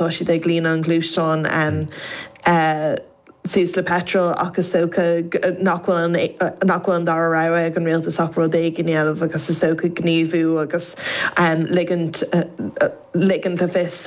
tá siad ag líonadh an ghluaisteáin suas le peitreal ach is dócha nach bhfuil an dara rogha ag an rialtas ach rud éigin a dhéanamh agus is dócha gníomhú agus ligint le fios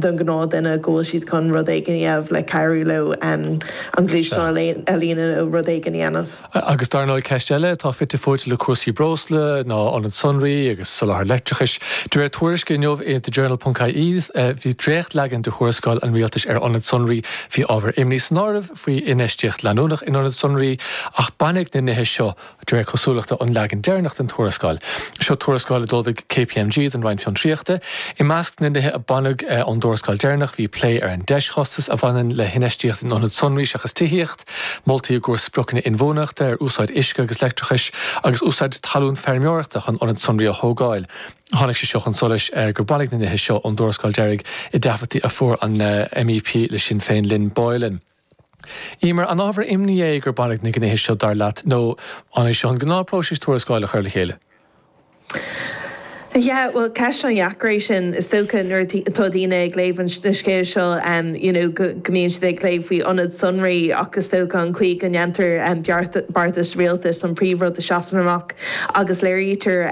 don ghnáth duine go bhfuil siad chun rud éigin a dhéanamh le cabhrú leo an ghluaisteán a líonadh nó rud éigin a dhéanamh. Agus dar ndóigh, ceist eile atá fite fuaite le cúrsaí breosla ná ionad sonraí agus soláthar leictreachais. De réir tuairisce inniu i The Journal ponc ie, bhí dréachtleagan de thuarascáil an rialtais ar ionaid sonraí, bhí ábhar imní san áireamh faoi infheistíocht leanúnach in ionaid sonraí, ach baineadh na nithe seo, de réir cosúlachta, ón leagan deireanach den tuarascáil. Seo tuarascáil a d'ullmhaigh KPMG don Roinn Fiontraíochta. I measc na nithe a baineadh ón dtuarascáil deireanach bhí plé ar an deischostas a bhaineann le hinfheistíocht in ionaid sonraí seachas tithíocht, Moltaí i gcomhair spriocanna inbhuanaitheachta ar úsáid uisce agus leictreachais agus úsáid talún feirmeoireachta chun ionad sonraí a thógáil. Tháinig sé seo chun solais gur baineadh na nithe seo ón dtuarascáil deiridh i dtaifid a fuair an MEP le Sinn Féin, Lynn Boylan. Emer, An ábhar imní é gur baineadh na gnéithe seo, dar leat, nó an é seo an gnáthphróiseas tuarascáil a chur le chéile? Yeah, bhuel, ceist an-dheacair é sin, is dócha, nuair atá daoine ag léamh an scéil seo, you know, go mbíonn siad ag léamh faoi ionad sonraí ach is dócha an chaoi go ndéantar beartas rialtais an príomhrud a seasann amach agus léirítear,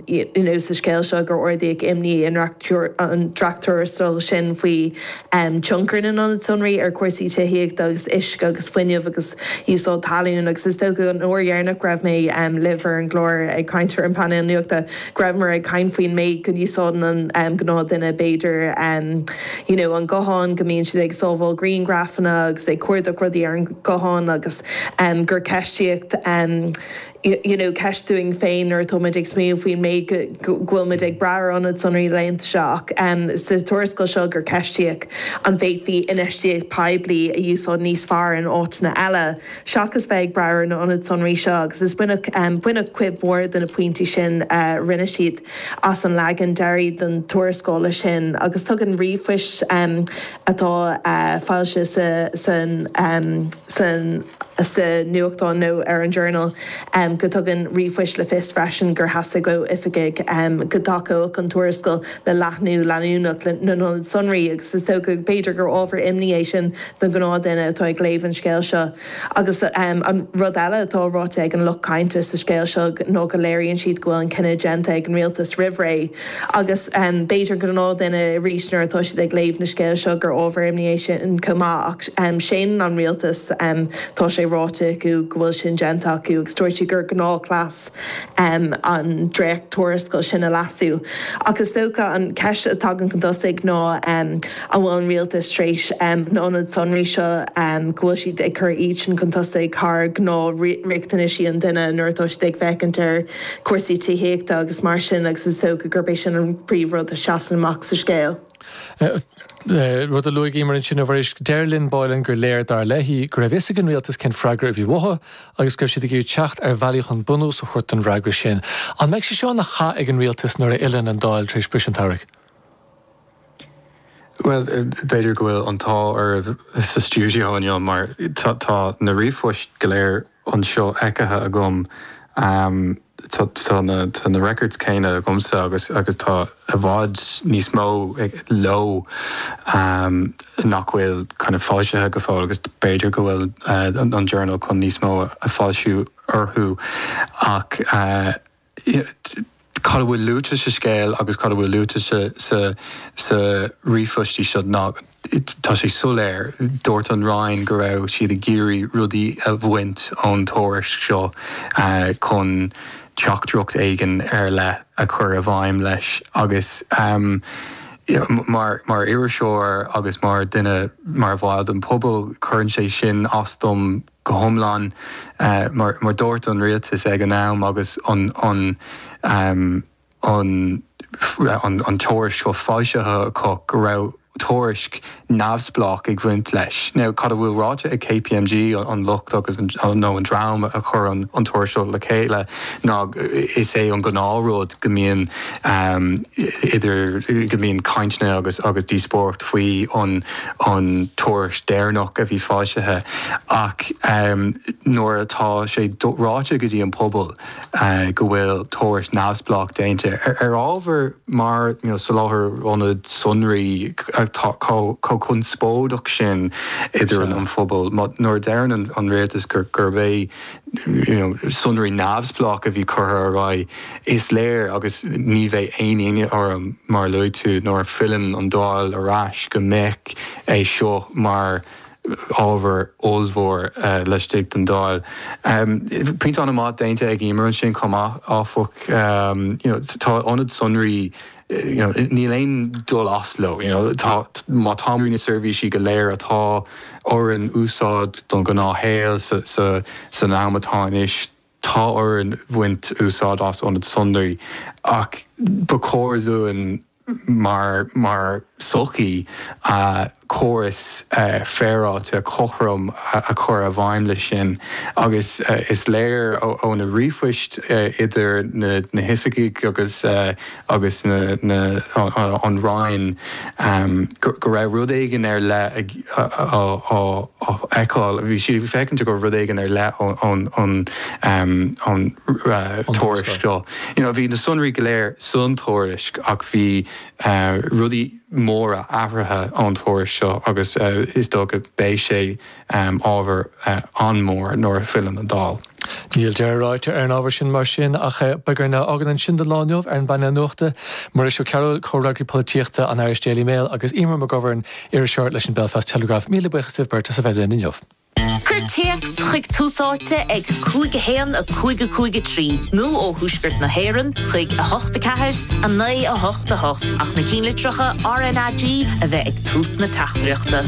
you know, sa scéal seo gur ardaíodh imní sa dréacht-tuarascáil sin faoi um tionchar na n-ionad sonraí ar chúrsaí tithíochta agus uisce agus fuinnimh agus úsáid talún agus is dócha an uair dheireanach go raibh mé um libh ar an gclár ag caint ar an bpainéal nuachta go rabhamar ag caint faoin méid go n-úsáideann an um gnáth duine b'fhéidir um you know an guthán go mbíonn siad ag sábháil grianghrafanna agus ag cuardach rudaí ar an guthán agus um gur ceistíodh um you know ceist dúinn féin nuair atá muid ag smaoineamh faoin méid go bhfuil muid ag brath ar ionad sonraí cuir i gcás leithéidí seo ach sa tuarascáil seo gur ceistíodh an bhféadfaí infheistíocht poiblí a úsáid níos fearr in áiteanna eile seachas bheith ag brath ar na ionaid sonraí seo agus is baineadh cuid mhór de na pointí sin a rinne siad as an leagan deiridh den tuarascáil leis sin agus tugann ríomhphoist atá foilsithe sa nuachtán nó ar an Journal, go dtugann ríomhphoist le fios freisin gur theastaigh ó oifigigh go dtacódh an tuarascáil le leathnú leanúnach na n-ionad sonraí, agus is dócha, b'fhéidir, gur ábhar imní é sin don ghnáthdhuine atá ag léamh an scéil seo. Agus an rud eile atá ráite ag an lucht cáinte sa scéal seo ná go léiríonn siad go bhfuil an cinneadh déanta ag an rialtas roimh ré. Agus b'fhéidir an gnáthdhuine arís nuair atá siad ag léamh na scéal seo gur ábhar imní é sin chomh maith. Ach séanann an rialtas, tá sé ráite acu, go bhfuil sin déanta acu agus dúirt siad gur gnáthchleas. an dréacht-tuarascail sin a leasú. Ach is dócha, an cheist a thagann chun tosaigh ná, an bhfuil an rialtas tar éis na n-ionad sonraí seo, go bhfuil siad ag cur iadsean chun tosaigh thar ghnáth-riachtanaisí an duine nuair atá siad ag féachaint ar chúrsaí tithíochta agus mar sin, agus is dócha gurb é sin an príomh-rud a sheasann amach sa scéal. rud a luaigh Emer ansin, a Mháirín. Deir Lynn Boylan gur léir, dar léi, go raibh a fhios ag an rialtas cén freagra a bhí uathu agus go raibh siad ag iarraidh teacht ar bhealaí chun bunús a thabhairt don fhreagra sin. An mbeidh sé seo ina chath ag an rialtas nuair a fhilleann an Dáil tar éis briseadh an tsamhraidh? Bhuel, b'fhéidir go bhfuil an t-ádh oraibh sa stiúideo inniu mar tá na ríomhphoist go léir anseo feicthe agam. Tá na records céanna agamsa agus tá i bhfad níos mó leo nach bhfuil foilsithe go fóill agus b'fhéidir go bhfuil an Journal chun níos mó a fhoilsiú orthu ach. Cad a bhfuil luaite sa scéal agus cad a bhfuil luaite sa ríomhphoistí seo, tá sé soiléir, dúirt an Roinn go raibh siad ag iarraidh rudaí a bhaint ón tuairisc seo chun teachtaireacht éigin ar leith a chur i bhfeidhm leis agus mar iriseoir agus mar dhuine, mar bhall den phobal, cuireann sé sin as dom. go hiomlán, mar a dúirt an rialtas ag an am, agus an tuairisc seo foilsithe acu, go raibh tuairisc neamhspleách ag bhaint leis. Now, cad a bhfuil ráite ag KPMG, an lucht agus, nó an dream a chuir an tuairisc seo le chéile, ná is é an gnáthrud go mbíonn. amh idir go mbíonn cainteanna agus díospóireacht faoi an tuairisc deireanach a bhí foilsithe ach nuair atá sé ráite go dtí an pobal go bhfuil tuairisc neamhspleách déanta ar ábhar mar soláthar ionad sonraí atá chomh conspóideach sin idir an phobal nuair a deireann an rialtas gurb é sonraí neamhspleácha a bhí curtha ar aghaidh, is léir, agus ní bheidh aon ionadh orm mar a luaigh tú, nuair a fhilleann an Dáil ar ais, go mbeidh é seo mar ábhar ollmhór laistigh den Dáil. Pointe an-mhaith déanta ag Emer ansin chomh maith, áfach. Tá ionad sonraí. níl aon dul as leo. Má tá muid, na seirbhísí go léir atá orainn úsáid don ghnáthshaol san am atá anois, tá orainn bhaint úsáid as ionad sonraí, ach ba chóir dúinn mar. sochaí, córas féaráilte cothrom a chur i bhfeidhm leis sin agus is léir ó na ríomhphoist idir na hoifigigh agus an Roinn go raibh rud éigin ar leith á fheiceáil, bhí siad ag féachaint go raibh rud éigin ar leith ón tuairisc seo. Bhí na sonraí go léir sa tuairisc ach bhí. rudaí móra athraithe ón tuairisc seo agus is dócha beidh sé ábhar an-mhór nuair a philleann an Dáil. Níl deireadh ráite ar an ábhar sin mar sin ach beidh orainn é a fhágaint ansin don lá inniu ar an bpainéal nuachta, Muiris Ó Cearbhaill, Comhfhreagraí Polaitíochta an Irish Daily Mail agus Eimear McGovern, Iriseoir leis an Belfast Telegraph. Míle buíochas libh beirt as a bheith linn inniu. Cuir téacs chuig Tús Áite ag 5 1 5 5 3 nó ó Thuaisceart na hÉireann chuig 8 4 9 8 8 ach na cinnlitreacha RnaG a bheith ag tús na teachtaireachta.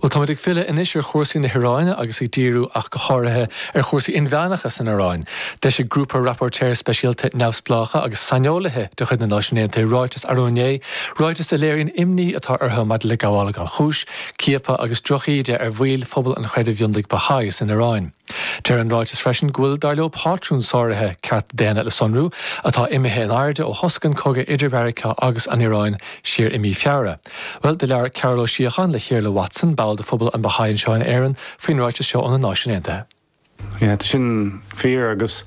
Bhuel, táimid ag filleadh anois ar chúrsaí na hIráine agus ag díriú ach go háirithe ar chúrsaí inmheánacha san Iráin. D'eisigh Grúpa Rapóirtéirí Speisialta neamhspleácha agus saineolaithe de chuid na Náisiún Aontaithe ráiteas arú inné, ráiteas a léiríonn imní atá orthu maidir le gabhála gan chúis, ciapadh agus drochíde ar bhaill phobal an chreidimh mhionlaigh Baha'i san Iaráin. Deir an ráiteas freisin go bhfuil, dar leo, pátrún sáraithe cearta daonna le sonrú atá imithe in airde ó thosaigh an cogadh idir Mheiriceá agus an Iaráin siar i mí Feabhra. Bhuel, do labhair Cearbhall Ó Síocháin le hIarfhlaith Watson, ball de phobal an Baha'i anseo in Éirinn, faoin ráiteas seo ó na Náisiúin Aontaithe. Tá sin fíor agus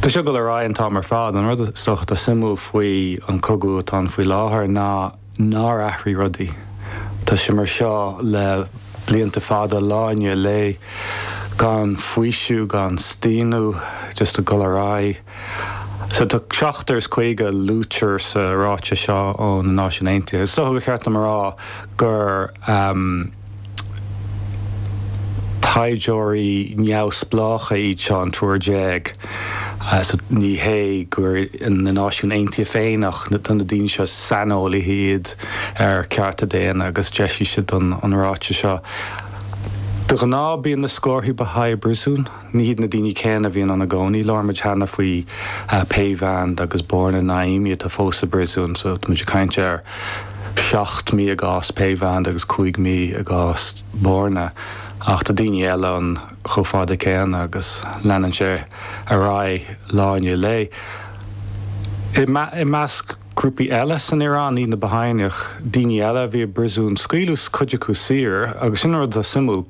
tá sé ag dul ar aghaidh an t-am ar fad. An rud is dócha suimiúil faoi an cogadh atá ann faoi láthair ná nár athraigh rudaí. Tá sé mar seo le blianta fada, lá i ndiaidh lae, gan faoiseamh, gan staonadh, just ag dul ar aghaidh. So tá seachtar is caoga a luaitear sa ráiteas seo ó na Náisiúin Aontaithe. Is dócha gur cheart dom a rá gur. Taighdeoirí neamhspleácha iad seo, an triúr déag, so ní hé gur na Náisiúin Aontaithe féin ach tá na daoine seo is saineolaithe iad ar chearta daonna agus d'eisigh siad an ráiteas seo. De ghnáth bíonn na scórtha Baha'i i bpríosún. Ní hiad na daoine céanna a bhíonn ann i gcónaí. Labhair muid cheana faoi Peyvand agus Borna Naimi atá fós i bpríosún. So táimid ag caint ar sheacht mí i gcás Peyvand agus cúig mhí i gcás Borna. Ach tá daoine eile ann chomh fada céanna agus leanann sé ar aghaidh lá i ndiaidh lae. I measc grúpaí eile san Iaráin, ní hiad na Baha'i ach daoine eile a bhí i bpríosún, scaoileadh cuid acu saor agus sin an rud atá suimiúil,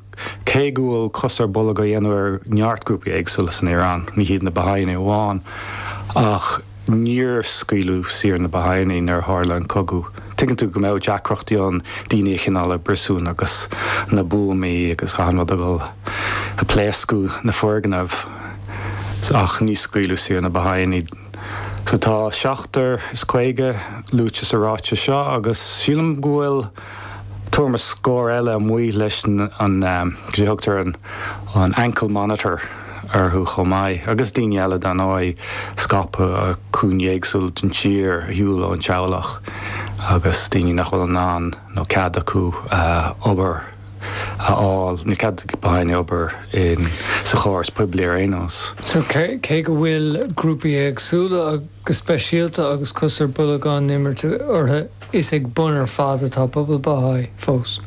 Cé go bhfuil cos ar bolg á dhéanamh ar neart grúpaí éagsúla san Iaráin, ní hiad na Bahá'íne amháin, ach níor scaoileadh saor na Bahá'íní nuair a tharla an cogadh, tuigeann tú go mbeadh deacrachtaí ann daoine a choinneáil i bpríosún agus na buamaí agus achan rud ag dul a phléascadh na foirgneamh, ach níor scaoileadh saor na Bahá'íní. Sea, tá seachtar is caoga luaite sa ráiteas seo agus sílim go bhfuil tuairim is scór eile amuigh leis an goidé a thugtar an ankle monitor orthu chomh maith agus daoine eile dar ndóigh scaipeadh i gcúinní éagsúla den tír ar shiúl ón teaghlach agus daoine nach bhfuil in ann nó cead acu obair a fháil, níl cead go mbeadh aon obair insa chóras poiblí ar aon nós. Sea, cé go bhfuil grúpaí éagsúla go speisialta agus cos ar bolg á imirt orthu, is ag bun ar fad atá pobal Baha'i fós.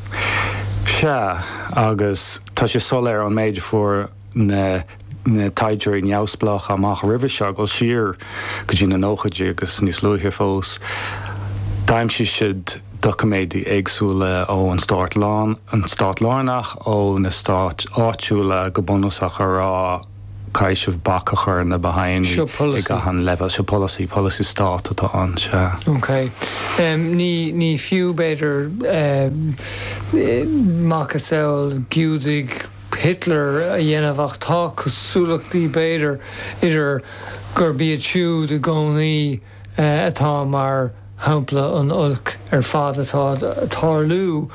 Sea, agus tá sé soiléir ón méid a fuair. na taighdeoirí neamhspleácha amach roimhe seo, ag dul siar go dtí na nóchaidí agus níos luaithe fós. D'aimsigh siad doiciméid éagsúla ón stát lárnach, ó na stáit áitiúla, go bunúsach, ag rá caithfidh bac a chur ar na Baha'inigh ag achan leibhéal. Seo polasaí, polasaí stáit atá ann, sea. Ok. Ní fiú, b'fhéidir, macasamhail Giúdaigh, Hitler a dhéanamh, ach tá cosúlachtaí, b'fhéidir, idir gurb iad siúd i gcónaí atá mar shampla an oilc ar fad atá ag tarlú,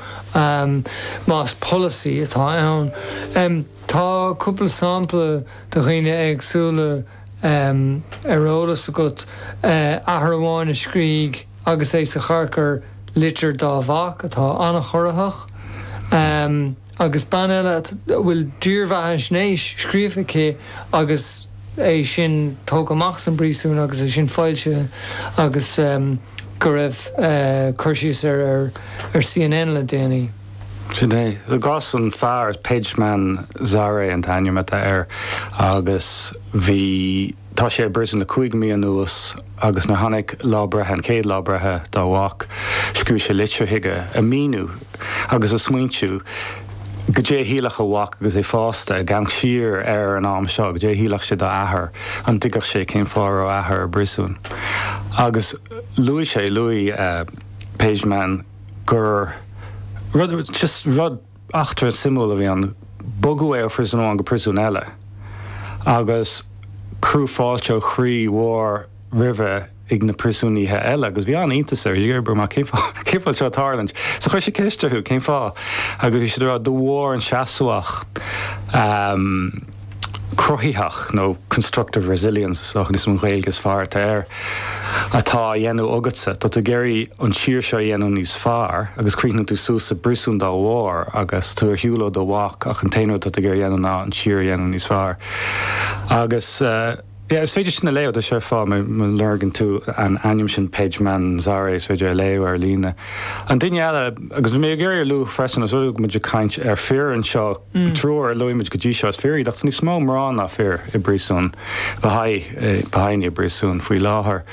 más polasaí atá ann. Tá cúpla sampla de dhaoine éagsúla ar eolas agat, athair amháin a scríobh, agus é sa charcair, litir dá mhac atá an-chorraitheach. agus bean eile a bhfuil dírbheathaisnéis scríofa aici agus é sin tógtha amach as an bpríosún agus é sin foilsithe agus go raibh cur síos air ar CNN le déanaí. Sin é. I gcás an fear, Pejman Zare an t-ainm atá air agus bhí. Tá sé i bpríosún le cúig mhí anuas agus nuair tháinig lá breithe, an chéad lá breithe, dá mhac, scríobh sé litir chuige ag míniú agus ag smaointiú goidé a shílfeadh a mhac agus é fásta, ag amharc siar ar an am seo, goidé a shílfeadh sé dá athair, an dtuigfeadh sé cén fáth a raibh a athair i bpríosún. Agus luaigh sé, luaigh Pejman gur rud, just rud, Eachtra suimiúil a bhí ann. Bogadh é ó phríosún amháin go príosún eile agus cuireadh fáilte ó chroí mhór roimhe ag na príosúnaithe eile agus bhí an-iontas air. b'fhéidir, mar, Cén fáth seo ag tarlúint? So chuir sé ceist orthu, Cén fáth? Agus bhí siad ag rá, De bharr an seasmhacht. cruthaitheach nó constructive resilience is dócha is an Ghaeilge is fearr atá air, atá á dhéanamh agatsa. Tá tú ag iarraidh an tír seo a dhéanamh níos fearr agus chríochnaíonn tú suas sa bpríosún dá bharr agus tú ar shiúl ó do mhac ach an t-aon rud atá tú ag iarraidh a dhéanamh ná an tír a dhéanamh níos fearr. Agus. Sea, is féidir sin a léamh, déarfá, má lorgann tú an ainm sin Peyman Zare, is féidir é a léamh ar líne. An duine eile, agus bhí mé ag iarraidh a lua freisin, anois go muid ag caint ar fir anseo, triúr a luaigh muid go dtí seo, is fir iad, ach tá níos mó mná ná fir i bpríosún, de Bhahá'ígh i bpríosún faoi láthair.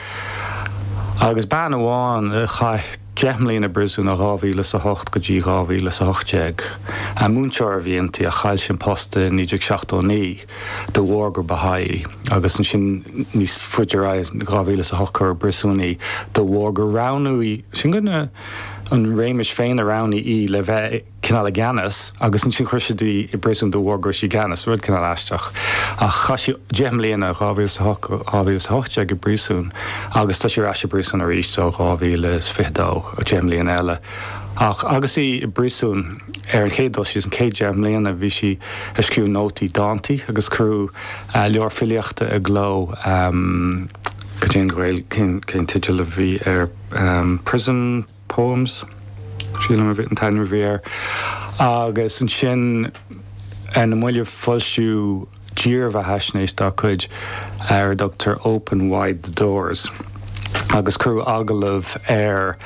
Agus bean amháin a chaith deich mbliana i bpríosún ó dhá mhíle is a hocht go dtí dhá mhíle is a hocht déag. Múinteoir a bhí inti, ach chaill sí an post i 1979. de bharr gur Baha'i, agus ansin níos faide ar aghaidh, in 2008 cuireadh i bpriosún í de bharr gur roghnaigh, sílim gurb é an réimis féin a roghnaigh í le bheith cineál i gceannas agus ansin chuir siad í i bpriosún de bharr go raibh sí i gceannas, rud cineál aisteach. Ach chaith sí deich mbliana, 2008-2018, i bpriosún agus tá sí ar ais i bpriosún arís ó 2022, deich mbliana eile. Ach agus í i bpriosún. Ar an chéad dul síos, an chéad deich mbliana bhí sí ag scríobh nótaí, dántaí agus cuireadh leabhar filíochta i gcló, go deimhin go bhfuil, cén teideal a bhí air, Prison Poems, sílim a bhí an t-ainm a bhí air, agus ansin ar na mallaibh foilsíodh, dírbheathaisnéis dá cuid ar a dtugtar Open Wide the Doors agus cuireadh agallamh ar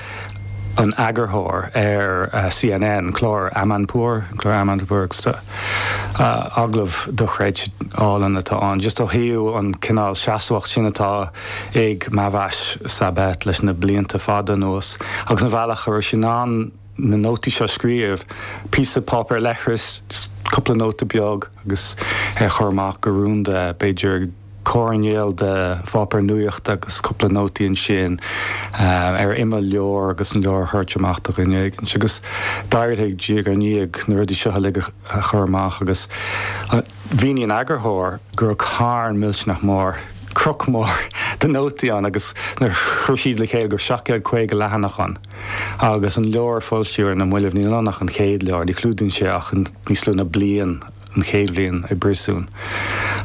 an eagarthóir ar CNN, clár Amanpour, clár Amanpour, agallamh dochreidte álainn atá ann just ó thaobh an cineál seasmhacht sin atá ag Mahvash Sabet leis na blianta fada anuas agus an bealach a raibh sí in ann na nótaí seo scríobh píosa páipéar leithris, cúpla nóta beag agus é a chur amach go rúnda, b'fhéidir coirnéal de pháipéar nuachta agus cúpla nótaí ansin ar imeall leabhar agus an leabhar a thabhairt amach do dhuine éigin. Agus d'éirigh diaidh ar ndiaidh na rudaí seo uilig a chur amach agus mhínigh an eagarthóir go raibh carn millteanach mór, cnoc mór de nótaí ann agus nuair a chuir siad le chéile go raibh 750 leathanach ann. agus an leabhar a foilsíodh ar na moillibh níl ann ach an chéad leabhar, ní chlúdaíonn sé ach níos lú na bliain, an chéad bhliain i bpríosún.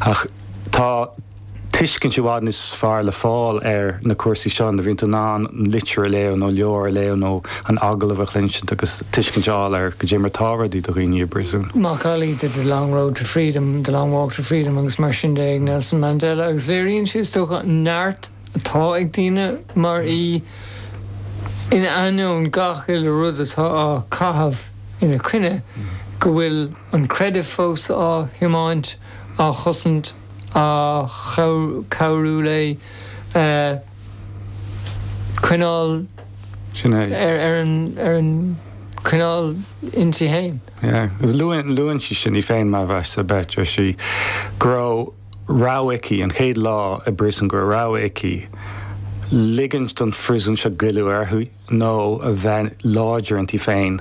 Ach tá tuiscint i bhfad níos fearr le fáil ar na cúrsaí seo nuair a bhíonn tú in ann litir a léamh nó leabhar a léamh nó an agallamh a chluinsint agus tuiscint a fháil ar goidé mar atá rudaí do dhaoine i bpríosún. macallaí de The Long Road to Freedom, The Long Walk to Freedom agus mar sin de ag Nelson Mandela agus léiríonn sé, is dócha, neart. atá ag daoine mar í, in ainneoin gach uile rud atá á chaitheamh ina coinne, go bhfuil an creideamh fós á thiomáint, á chosaint, á cabhrú léi coinneáil ar an choinneáil inti féin. Luann sí sin í féin mar mhisneach a bheith, deir sí go raibh. rogha aici, an chéad lá i bpríosún gur rogha aici, ligint don phríosún seo goilleadh uirthi nó a bheith láidir inti féin